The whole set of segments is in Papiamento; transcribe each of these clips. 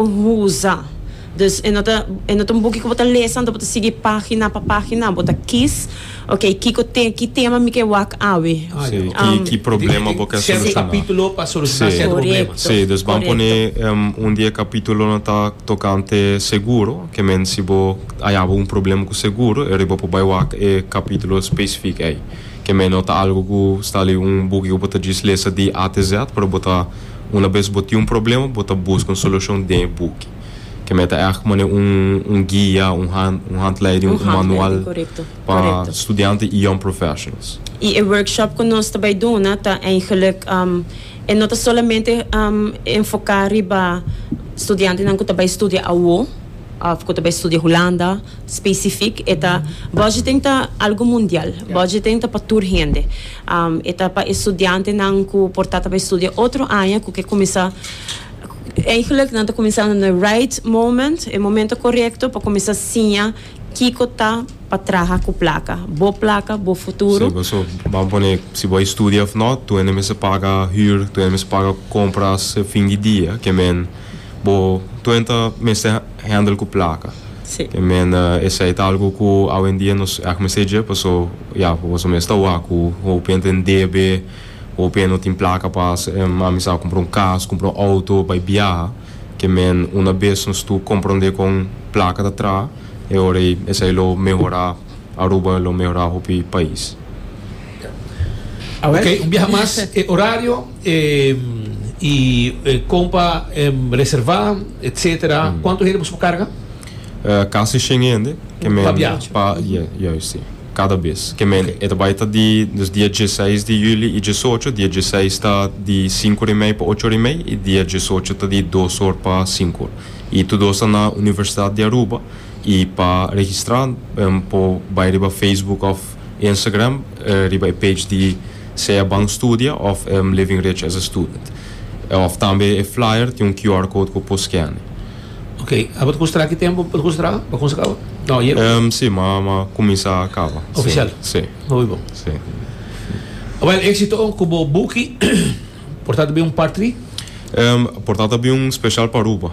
Huza. Dus e no ta e no ta un buki ku bo ta lesa, anto bo ta sigui página pa página. Bo ta kis, Oke, kiko te ki tema mi ke wak awe? Si, ki ki problema bo ke Sète solushoná. kapítulo pa solushoná sète problema. Si, dus ban pone un di e kapítulonan ta tokante seguro. Ke men si bo a yaba un problema ku seguro, e riba bo por bai wak e kapítulo spesifik ei. Ke men no ta algu ku sta li un buki ku bo ta djis lesa di A te Z, pero bo ta. Una bes bo tin un problema bo ta busca un solucion den e buki. Kemey ta eact como ne un un guia, un hand un handleiding, un manual pa studiante y young professionals. Y e workshop cu nos ta bay duna ta eigenlic e no ta solamente enfoca riba studiantenan cu ta bay studia awo of cu ta bay studia Hulanda specific e ta budgeting ta algo mundial, budgeting ta pa tur hende. E ta pa e studiantenan ku por ta tabata studia otro aña ku ke kuminsá Eigenlijk nan ta kuminsando na e right moment, e momento korekto pa kuminsá siña kiko ta pa traha ku plaka. Bo plaka, bo futuro. Sí, paso ban pone si bo a studia òf nò, tur hende mester paga hür, tur hende mester paga kompras fin di dia. Ke men, bo, tur hende ta mester. hendel cu placa te mende esey ta algo cu awendia nos ec mester dje paso ya boso mes ta wak cu hopi hende tin debe hopi hende no tin placa pa amisal compra un cas compra un auto bay biaha ke men una bes nos tu comprende con placa ta traha e ora ey esey lo mehora. Aruba lo mehorá hopi pais. Ok, un biaha mas e orario y e con pa reserva etc. Cuanto hende bo su por carga? Casi shen hende. Cu pa biaha? Pa, yeah, juist si. Cada bes. Ke men e ta bai ta di nos dia dieseis di juli y diesocho. Dia dieseis ta di sinku or y mei pa ocho or y mei y dia diesocho ta di dos or pa sinku or. Y tur dos ta na Universidad di Aruba. Y pa registra por bay riba Facebook of Instagram riba e page di Sea Ban Studia of Living Rich as a Student. Of tambe e flyer tin un QR code cu por scan. Ok, abo ta considera aki tempo bo ta considera pa cuminsa caba? No, ayer bo ta. Si, ma ma cuminsa caba. Oficial? Si. Muy bon. Si. Well, exito cu bo buki. Por ta ta bin un part three? Por ta ta bin un special pa Aruba.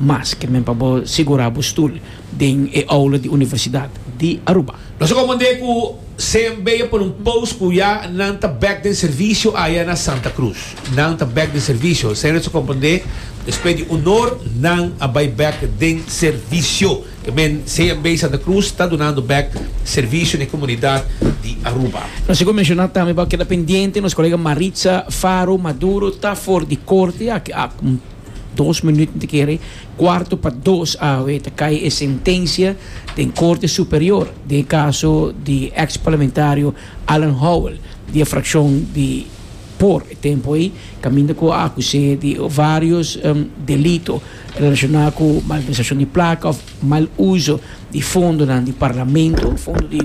Mas ke men pa bo sigurá bo stul den e oula di Universidat di Aruba. Nos a komand'é ku CMB a pone un pos ku ya nan ta bek den servisio aya na Santa Cruz. Nan ta bek den servisio, esei nos a komprend'é despues di un or nan a bai bek den servisio. Ta bien, CMB Santa Cruz ta dunando bek servisio n'e komunidat di Aruba. Nos a menshona tambe bo a keda pendiente nos kolega Maritza Faro Maduro ta for di korte aki. Dos minuut n'ta kere kuarto pa dos awe ta kai e sentensia den Korte Superior den e kaso di eks parlamentario Alan Howell di e frakshon di por e tempu ei kaminda ku a akus'é di varios delito relashoná ku malversashon di plaka òf mal uso di fondonan di parlamento, fondo di.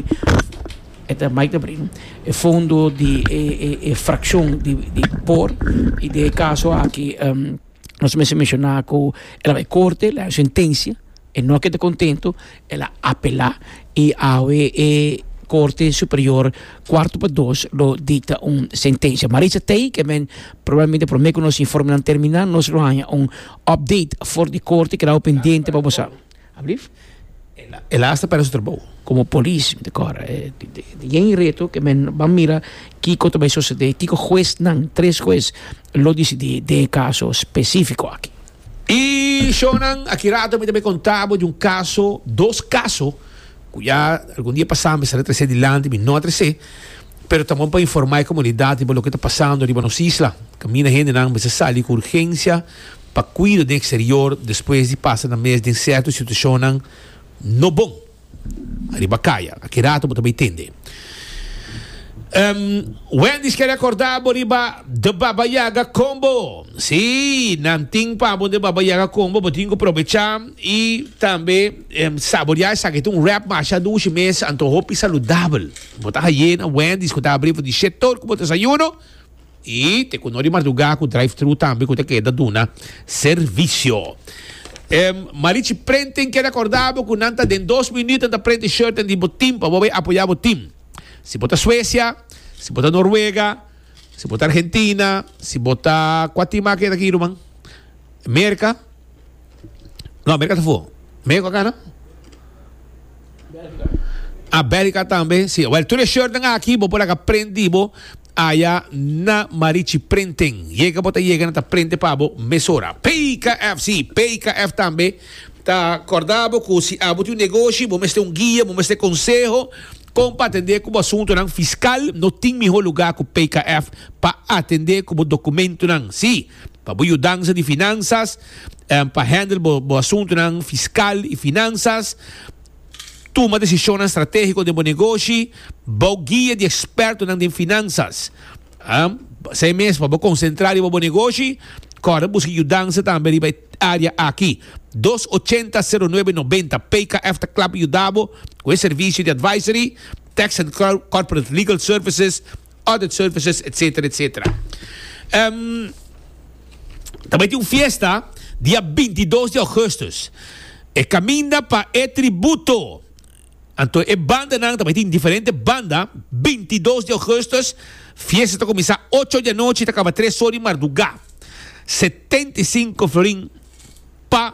E ta mai ta bring e fondo di e fraccion di por y den e caso aki nos mester menciona cu el a bay corte el a haci sentencia e no a keda contento el a apela y awe e corte superior cuarto pa dos lo dicta un sentencia Marisa Tay que men probablemente prome cu nos informe nan termina nos lo haña un update for di corte keda awe pendiente pa bo sa. Ablief. El a hasta perde su trabou como polis mi ta kora e yen reto ke men ban mira kiko ta bay sosede kiko hues nan tres hues lo disidí den e kaso specifico aki. Y shownan aki rato mi ta bay konta bo di un kaso dos kaso ku ya algun dia pasá mi sali trese dilanti mi no a trese pero ta bon pa informa e komunidat riba loke ta pasando riba nos isla kaminda hendenan mester sali ku urgensia Pa cuido den exterior despues di pasa na mes den cierto situacionnan no bon ariba caya. Aki rato bo ta bay tende. Wendy's ke recorda bo riba The Baba Yaga Combo. Si, nan tin pa bo The Baba Yaga Combo. Bo tin cu probecha y tambe saborea esaki. Ta un wrap masha dushi mes, anto hopi saludabel. Bo ta haye na Wendy's cu ta abri for di shetoor cu bo ta desayuno. Y te cuno di marduga cu drive thru tambe cu ta keda duna servicio. Em Marichi Printing kier acorda bo cu nan ta den dos minuut nan ta print e shirten di bo team pa bo bay apoya bo team. Si bo ta Suecia, si bo ta Noruega, si bo ta Argentina, si bo ta cua team aki e ta aki ruman? Merca? No Merca ta for. Merca cu cana? Ah Belgica tambe si. Well tur e shirten aki bo por laga print di bo Aya na Marichi Prenten. Yega bo ta yega nan ta prende pa bo mesora. PKF, si, PKF tambe ta korda bo ku si abo tin un negoshi bo mester un guia, bo mester konseho kon pa atendé ku bo asuntunan fiskal, no tin mihó lugá ku PKF pa atendé ku bo dokumentunan. Si, pa bo yudansa di finansas, pa handle bo asuntunan fiskal i finansas, tuma desishonnan stratégiko den bo negoshi bou guia di ekspertonan den finansas. Esei mes, pa bo konsentrá riba bo negoshi, kòrda buska yudansa tambe riba e área aki. Dos ochenta seru nuebe nobenta, PKF ta kla pa yuda bo ku e servisio di advisory, tax and corporate legal services, Audit services etc etc. Ehm ta bay tin un fiesta dia binti dos di augustus e caminda pa e tributo anto e bandanan ta bay tin diferente banda binti dos di augustus fiesta ta cuminsa ocho di anochi ta caba tres or di marduga setenta y cinco florin pa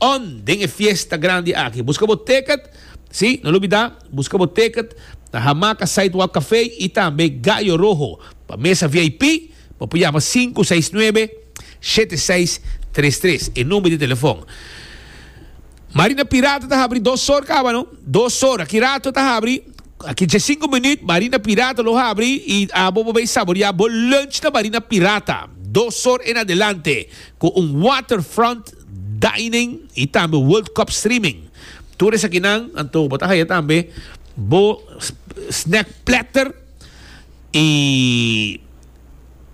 On den e fiesta grandi aki. Buska bo ticket, si, no lo bida, buska bo ticket na Hamaca Sidewalk Café y tambe Gallo Rojo pa mesa VIP, bo por yama sinku seis nuebe, shete seis tres tres, e number di telefon. Marina Pirata ta habri dos or caba no, dos or, aki rato ta habri, aki dje sinku minuut Marina Pirata lo habri y abo bo bay saboria bo lunch na Marina Pirata, dos or en adelante, cu un waterfront dining y tambe World Cup streaming. Tur esakinan anto bo ta haya tambe bo snack platter y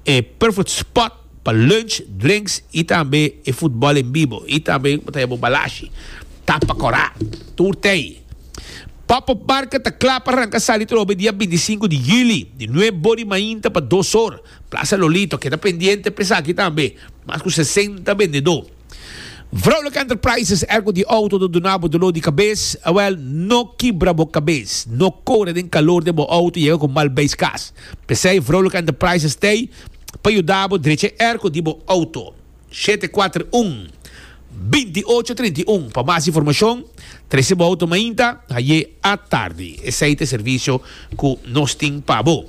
e perfect spot pa lunch, drinks y tambe e futbol en bibo y tambe bo ta haya bo balashi, tapa cora, tur tey. Pop Up Market ta cla pa ranca sali trobe dia binti sinku di juli di nuep bo di mainta pa dos or. Plaza Lolito keda pendiente pa esaki tambe, mas ku sesenta bendedó. Vrouwelijke Enterprises, ergo di outo ta duna bo doló di kabes? Awèl, no kibra bo kabes. No kore den kalor den bo outo yega ku mal beis kas. P'esei Vrouwelijke Enterprises t'ei pa yuda bo drecha e erko di bo outo. shete kuater un, binti ocho trinta i un. Pa mas informashon trese bo outo mainta haye a tardi. Esei ta e servisio ku nos tin pa bo.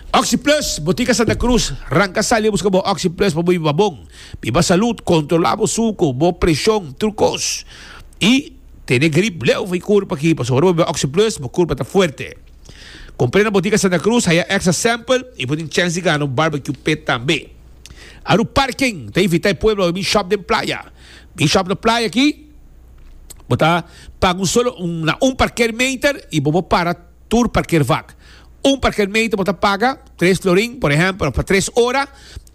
Oxi Plus, Botica Santa Cruz, Ranca sali a buska bo Oxi Plus pa bo biba bon, biba salud, kontrolá bo suku, bo preshon, tur kos. I tene grip leu for i kurpa aki pasobra ora bo biba Oxi Plus bo kurpa ta fuerte. Kumpr'é na Botica Santa Cruz, haye a extra sample i bo tin chèns di gana un barbecue pit tambe. Aru parken ta invita e pueblo pa bin shop den playa. Bin shop na playa aki, bo ta paga un solo na un parker meter y bo por para tur parker vak. Un parker meter bo ta paga tres florin por ehempel of pa tres ora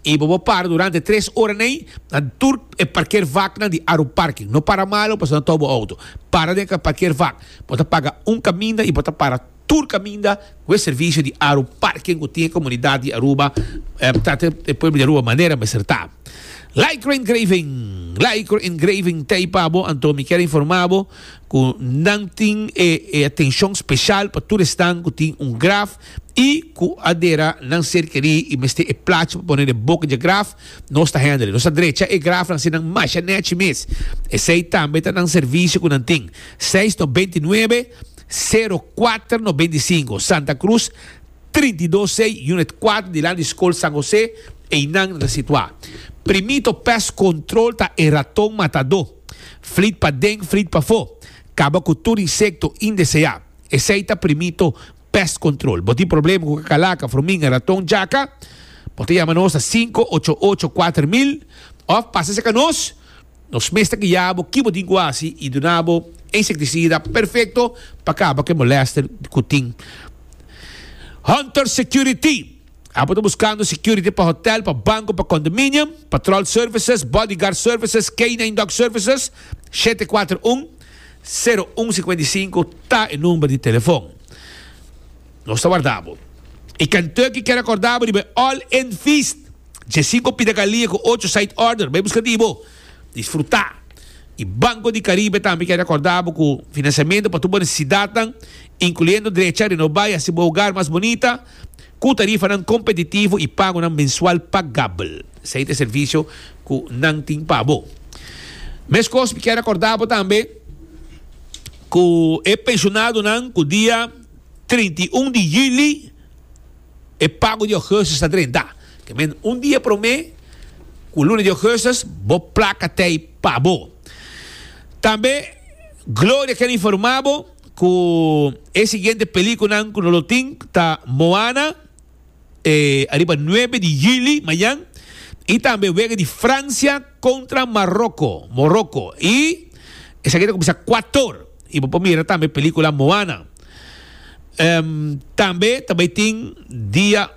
y bo por para durante tres ora na ey na tur e parker vaknan di Aru Parken. No para malo pasobra nan tobo auto. Para den e parker vak. Bo ta paga un kaminda y bo ta para. Tur caminda cu e servicio di aru parking cu tin e comunidad di Aruba trata e pueblo di Aruba manera mester ta. Lycra Engraving Lycra Engraving ta ahí pa bo anto mi kier informa bo cu nan tin e e atencion special pa tur esnan cu tin un graf y cu a dera nan ser querí y mester e placha pa pone den boca dje graf nos ta handle nos ta drecha e graf nan así nan masha nechi mes esey tambe ta nan servicio cu nan tin seis no bintinuebe Sero kuater nobenta i sinku, Santa Cruz, trinta i dos sei, Unit kuater di lado di Skol San José, einan ta situá. Primito pèst kontrol ta e raton matadó. Flit pa den, flit pafó. Kaba ku tur insekto indeseá. Esei ta Primito pèst kontrol. Bo tin problema ku kakalaka, fruminga, raton, jaka? Bo ta yama nos na sinku ocho ocho kuater mil òf pasa seka nos. Nos mes ta guia bo kibo tin ku hasi i duna bo insektisida perfekto pa kaba ku e molèster ku tin. Hunter Security, Abo ta buskando security pa hotèl, pa banko, pa kondominium? Patròl Services, Bodyguard Services, Canine Dog Services, shete kuater un, sero un sikuenta i sinku ta e number di telefon. Nos ta warda bo. E Kentucky kier a korda bo riba e All In Feast, dje sinku pida galia ku ocho side order. Bai buska di bo. Disfrutá. E Banco di Caribe tambe kier a korda bo ku finansiamentu pa tur bo nesesidatnan, inkluyendo drecha a renobá i hasi bo hogar mas bonita, ku tarifanan kompetitivo i pagunan mensual pagabel. Esei ta e servisio ku nan tin pa bo. Meskos mi kier a korda bo tambe ku e penshonadonan ku dia. Trinta i un di juli e pago di augustus ta drenta. Ke men un dia promé ku luna di augustus bo plaka tei pa bo. Tambe Gloria ken informá bo ku e siguiente pelikunan ku no lo tin ta Moana. e ariba nuebe di yuli mañan, i tambe wega di Fransia kontra Maroko, Moroko, i esaki ta kuminsá kuator, i bo por mira tambe pelíkula Moana. Em, tambe ta bai tin dia,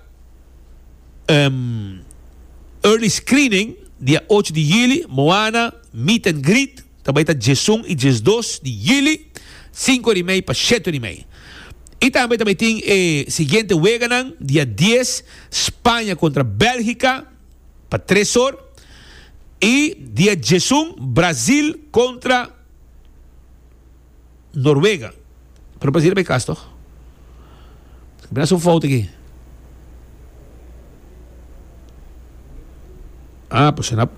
em, early screening, dia ocho di yuli, Moana, Meet and Greet. Ta bai ta djesun i djesdos di yili, sinku ori mei pa sheti ori mei. I tambe ta bai tin e siguiente weganan, dia dies, Spaña kontra Bèlgika, pa tres or, i dia djesun, Brazil kontra. Noruega. Pero parece riba e cas toch? Mira su fout aki. Ah, pues na,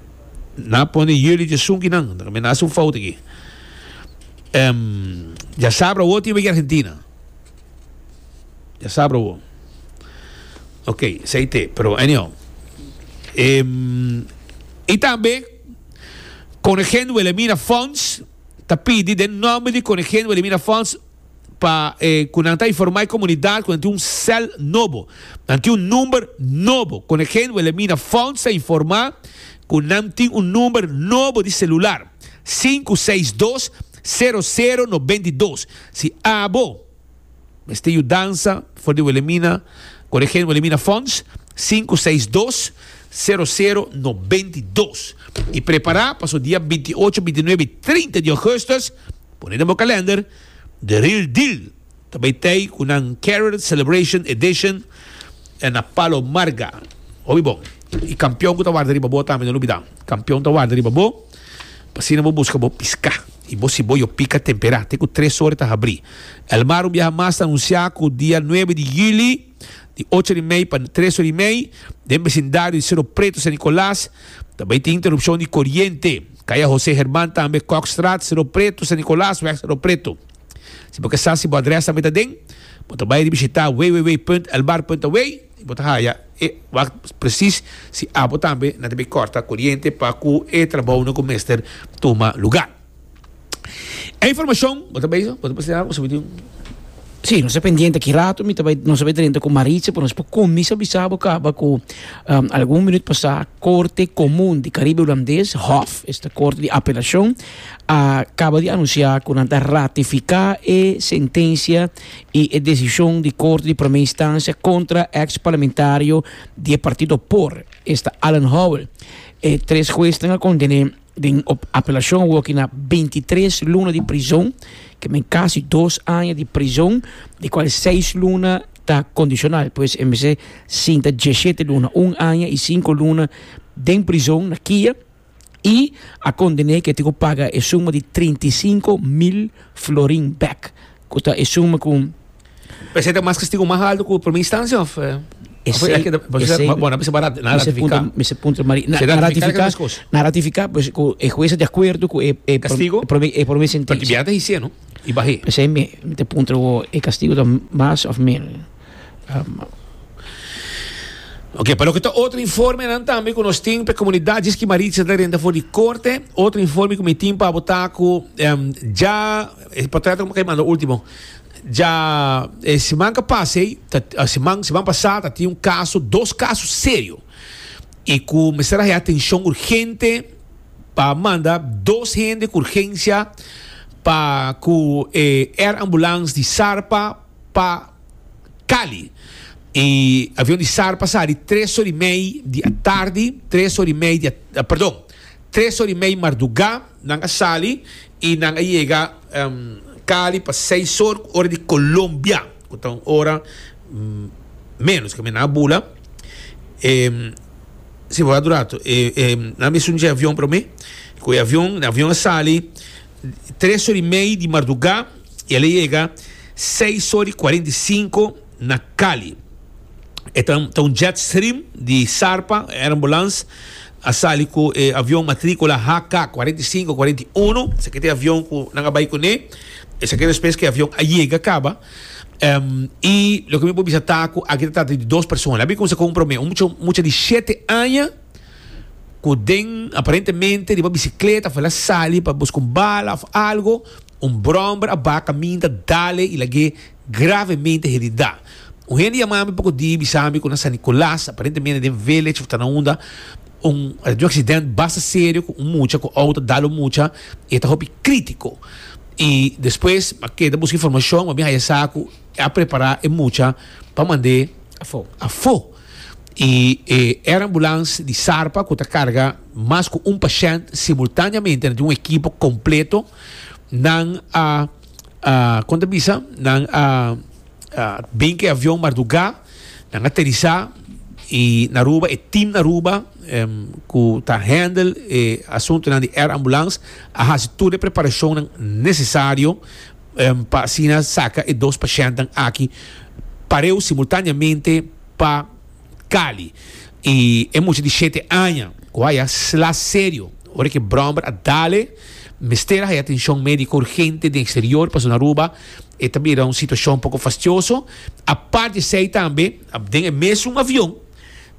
na pone jullie de sunkinan. Dan mira su fout aki. Um, ya sabra wo tiba Argentina. Ya sabra wo. Ok, sei te, pero anyhow. Um, y también con Gen Wilhelmina Fons. ta pidi den nomber di Koningin Wilhelmina Fonds pa e ku nan ta informa e komunidat ku nan tin un sèl nobo, nan tin un number nobo. Koningin Wilhelmina Fonds ta informa ku nan tin un number nobo di selular, sinku seis dos, sero sero, nobenta i dos. Si abo. Mester yu dansa for di Wilhelmina Coregen Wilhelmina Fonds sinku seis dos sero sero noventa i dos i prepara pa so dia binti i ocho binti i nuebe i trinta di Augustus pone den bo kalender The Real Deal ta bay tey ku nan Carol Celebration Edition den na Palo Marga obi bon i kampion ku ta warda riba bo tambe no lubida kampion ta warda riba bo. Pa asina bo buska bo piská i bo siboyo pika temperá te ku tres ora ta habrí. El Mar un biaha mas ta anunsiá ku dia nuebe di yüli di ocho ora i mei pa tres ora i mei den besindario di Sero Preto, San Nicolas, ta bai tin interupshon di koriente. Kaya José Herman tambe Kokstraat, Sero Preto, San Nicolas, Wèg Sero Preto. Si bo ke sa si bo adrès tambe ta den, bo ta bai di bishitá www.elmar.aw. Bo ta haya e wak presis si abo tambe na ta bay corta coriente pa cu e trabounan cu mester tuma lugar. E informacion bo ta bay so, bo ta presenta bo subi di un. Sí, nos ta pendiente aki rato, mi ta bay, nos ta bay drenta cu Maritza, pero nos por cuminsa bisa bo caba cu algun minuut pasá Corte Comun di Caribe Hulandes, hof, esta corte di apelacion, a caba di anuncia cu nan ta ratifica e sentencia y e decision di Corte di Primer Instancia contra ex parlamentario di e partido por, esta Alan Howell. E tres huesnan a condené den op apelacion awoki na bintitres luna di prison, ke men casi dos aña di prison, di cual seis luna ta condicional. Pues e mester sinta dieshete luna, un aña y cinco luna, den prison na Kia. i a kondené ku e tin ku paga e suma di trinta i sinku mil florin bèk, ku ta e suma ku. P'esei ta mas kastigu mas altu ku promé instansia òf? Esei, esei, Bon, nan bisa bo a ratifiká. Mi se puntra, Maria. Na ratifiká, na ratifiká pues ku e hues ta di akuerdo ku e promé, e promé sentensia. Pasobra biaha ta hisié, no? I bah'é. P'esei mi ta puntra bo, e kastigu ta mas òf menos? Ok, pa loke ta otro informenan tambe ku nos tin pa e komunidat djis ki Maritza ta renta for di korte, otro informe ku mi tin pa bo ta ku dja e potreto ku mi manda ultimo dja e siman ku pasa ei siman siman pasa ta tin un kaso dos kaso serio i ku mester haña atenshon urgente pa manda dos hende ku urgensia pa ku e air ambulance di Sarpa. pa Cali y avion di sar pasa di tres ora y mei di atardi tres ora y mei di perdon tres ora y mei marduga nan a sali y nan a yega Cali pa seis ora cu ora di Colombia cu ta un ora menos ke mi nan a bula si bo a dura harto nan a mester dje avion pero mi cu e avion avion a sali tres ora y mei di marduga. y el a yega seis ora y cuarenta y cinco na Cali. E ta ta un jet stream di Sarpa Air Ambulance a sali cu e avion matricula HK cuarenta y cinco cuarenta y uno, esaki ta e avion cu nan a bay cu ne, esaki ta despues cu e avion a yega caba, em, y loke mi por bisa ta cu aki ta trata di dos persona. Labi cuminsa cu un prome, un mucha mucha di shete aña cu den aparentemente riba bicicleta afuera sali pa busca un bala of algo, Un bromber a ba kaminda Dale y lag'é gravemente heridá. Un hende yamá mi poko di bisá mi ku na San Nicolas, aparentemente den Village of Tonawanda, un a tene un aksident basta serio ku un mucha ku outo a dal un mucha y e ta hopi krítiko. Y despues mi a keda buska informashon mi a bin haya sa ku e a prepará e mucha pa mand'é afó. Y e air ambulance di Sarpa ku ta karga mas ku un pashènt simultáneamente na tin un ekipo kompleto. Nan a kon ta bisa, nan a bin ku e avion mardugá, nan aterisá i na Aruba e tim na Aruba ku ta hendel e asuntunan di air ambulans a hasi tur e preparashonnan nesesario pa asina saka e dos pashèntnan aki pareu simultaneamente pa Cali y e mucha di shete aña cu haya sla serio ora cu e bromber a dale mester a haya atencion medico urgente den exterior pasobra na Aruba e ta bira un situacion poco fastioso. Apart esey tambe den e mesun avion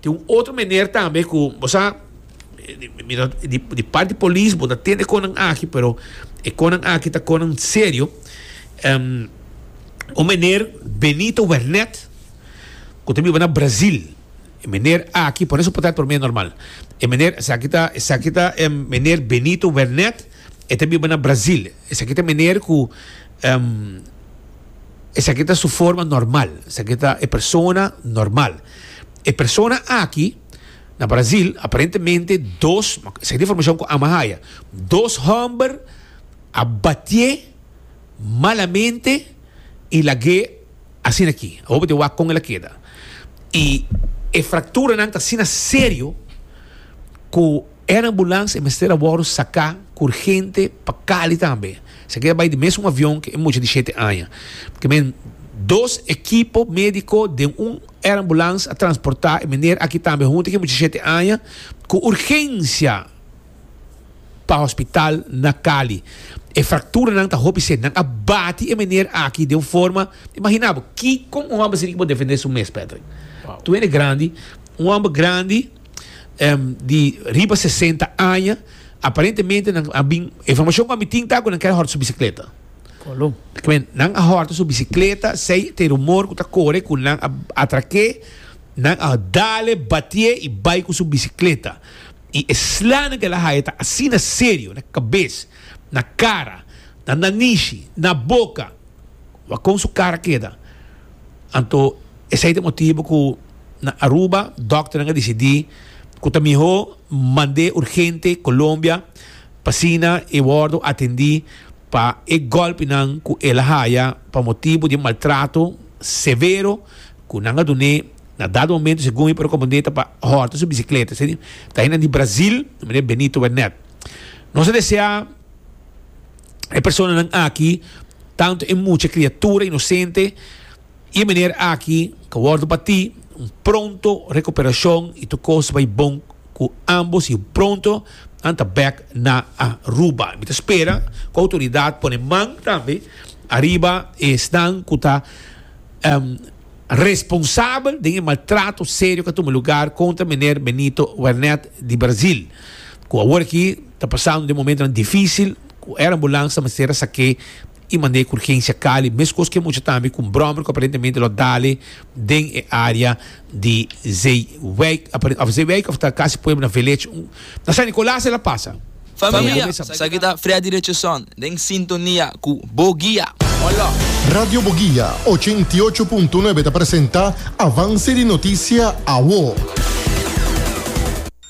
tin un otro meneer tambe cu bo sa di part di polis bo ta tende con nan aki pero e con nan aki ta con nan serio un meneer Benito Wernet. ku ta biba na Brazil, e meneer aki, pone su potat promé normal, e meneer, esaki ta, esaki ta em meneer Benito Wernet, e ta biba na Brazil, esaki ta meneer ku em, esaki ta su forma normal, esaki ta e persona normal. E persona aki, na Brazil, aparentemente dos, esaki ta informashon ku Ama haya, dos hòmber a batié malamente i lag'é, Asina ki, a hopi di wak kon el a keda. I e frakturanan ta asina serio ku e anambulans e mester a wòrdu saká ku urgente pa Cali tambe. Esaki ta bai den mesun avion ku e mucha di shete aña. Ke men dos ekipo médiko den un eranbulans a transportá e meneer aki tambe huntu ku e mucha di shete aña ku urgensia. pa hospital na Cali. E fracturanan ta hopi seri. Nan a bati e meneer aki den un forma. Imagina bo, kiko un homber así tin ki por defende su mes, Patrick? Tu hende grandi, un homber grandi, di riba sesenta aña. Aparentemente nan a bin, e informacion cu ami tin ta cu nan ker a horta su bicicleta. Nan a horta su bicicleta, sey ta e rumor cu ta core cu nan a atraque, nan a dale, batié y bay cu su bicicleta. I e slánan ku el a haya ta asina serio, na kabes, na kara, na nanishi, na boka. Wak kon su kara keda. Anto esei ta e motibu ku na Aruba dòkternan a disidí ku ta mihó mand'é urgente Colombia pa asina e wòrdu atendí pa e gòlpinan ku el a haya pa motibu di e maltrato severo ku nan a dun'é. Na dado momento si Gumi por componde ta pa horta su bicicleta, esei ta hendenan di Brazil, di meneer Benito Wernet. Nos ta desea e personanan aki, tanto e mucha criatura inocente y e meneer aki ca wordo bati, un pronto recuperacion y tur cos ta bay bon cu ambos y pronto nan ta bek na Aruba. Mi ta spera cu autoridad pone man tambe ariba esnan cu ta. responsabel den e maltrato serio k'a tuma lugar kontra Meneer Benito Wernet di Brazil, ku awor aki ta pasando den momentonan difisil, ku e rambulansa ta mester a sak'é i mand'é ku urgensia Cali, meskos k'e mucha tambe ku un bròmer ku aparentemente lo dale den e área di Zeewijk aparente of Zeewijk of ta casi pueblo na village un na San Nicolas el a pasa. Familia, esaki ta Freddy Richardson den sintonia cu Bo Guia. Hola. Radio Bo Guia ochenta i ocho punto nuebe ta presenta Avance di Noticia, Awo.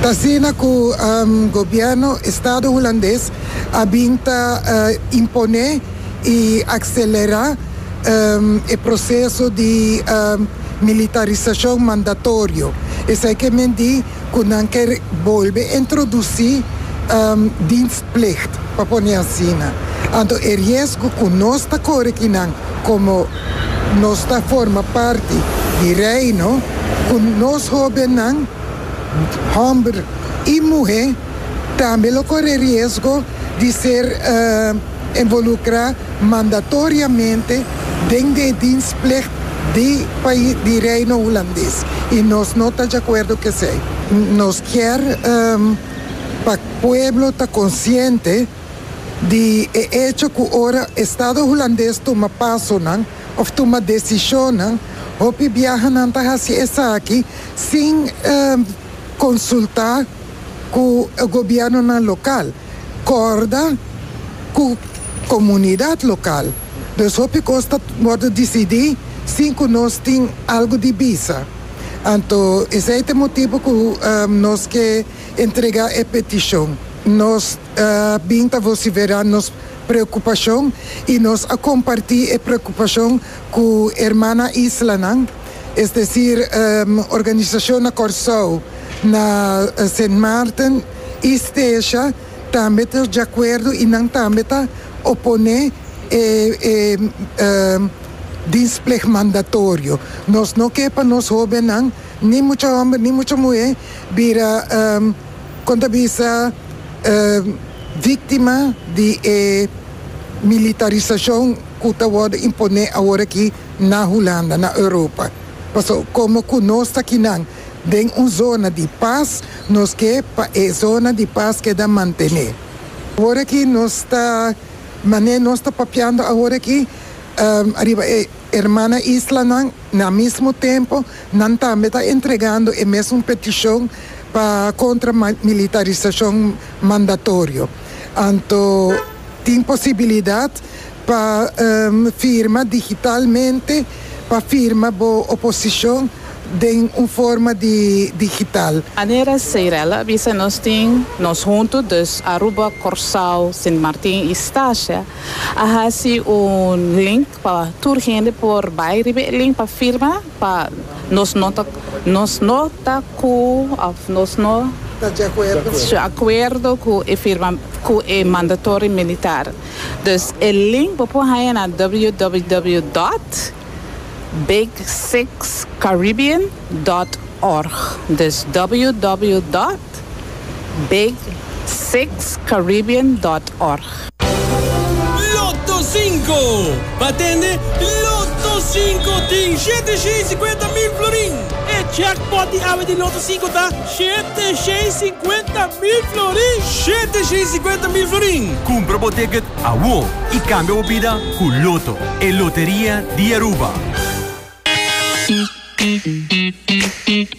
T'asina cu gobierno Estado Hulandes a bin ta impone y accelera e proceso di militarisacion mandatorio, esey ke men di cu nan ker bolbe introduci dienst. plicht, pa pone asina. Anto e riesgo cu nos ta core ki nan como nos ta forma parti di Reino, cu nos hobennan, homber y muhe, tambe lo core riesgo di ser involucra mandatoriamente den di e dienstplicht di pais di Reino Hulandes y nos no ta djacuerdo cu esey. Nos kier. pa pueblo ta konsiente di e echo ku ora estado hulandes tuma pasonan òf tuma desishonnan, hopi biaha nan ta hasi esaki sin konsultá ku gobièrnunan lokal, kòrda ku komunidat lokal. Dus hopi kos ta wòrdu disidí sin ku nos tin algu di bisa. Anto esei ta e motibu ku nos ke entregá e petishon. Nos a bin ta vosiferá nos preokupashon i nos a kompartí e preokupashon ku hermana islanan, es desir organisashon na Kòrsou, na Sint Maarten i Steesja tambe ta djakuerdo i nan tambe ta oponé e Displeg mandatorio. Nos no ke pa nos hobennan, ni mucha homber ni mucha muhé, bira, kon ta bisa, víktima di e militarisashon ku ta wòrdu imponé aworakí na Hulanda, na Europa. Paso, komo ku nos ta kinan den un zona di pas, nos ke pa e zona di pas keda mantené. Aworakí nos ta, manera nos ta papiando aworakí, Riba e hermana islanan, na mismo tempo nan tambe ta entregando e mesun peticion pa contra militarisacion mandatorio. Anto tin posibilidad pa firma digitalmente pa firma bo oposicion den un forma di digital. Anera Seirel a bisa nos tin nos hunto, dus Aruba, Corsao, Sint Martin y Stasia A hasi un link pa tur hende por bai riba e link pa firma pa nos no ta nos no ta ku of nos no Ta deacuerdo. ta akuerdo ku e firma ku e mandatory militar. Dus e link bo por haña na www dot big six caribbean dot org. Dus www dot. Internet, Big Six Caribbean dot org. Lotto Cinco, pa tende, Lotto Cinco tin shete shei cincuenta mil florin! E jackpot di awe di Lotto Cinco ta shete shei cincuenta mil florin! Shete shei cincuenta mil florin! Cumpra bo ticket awo y cambia bo bida cu Lotto, e loteria di Aruba!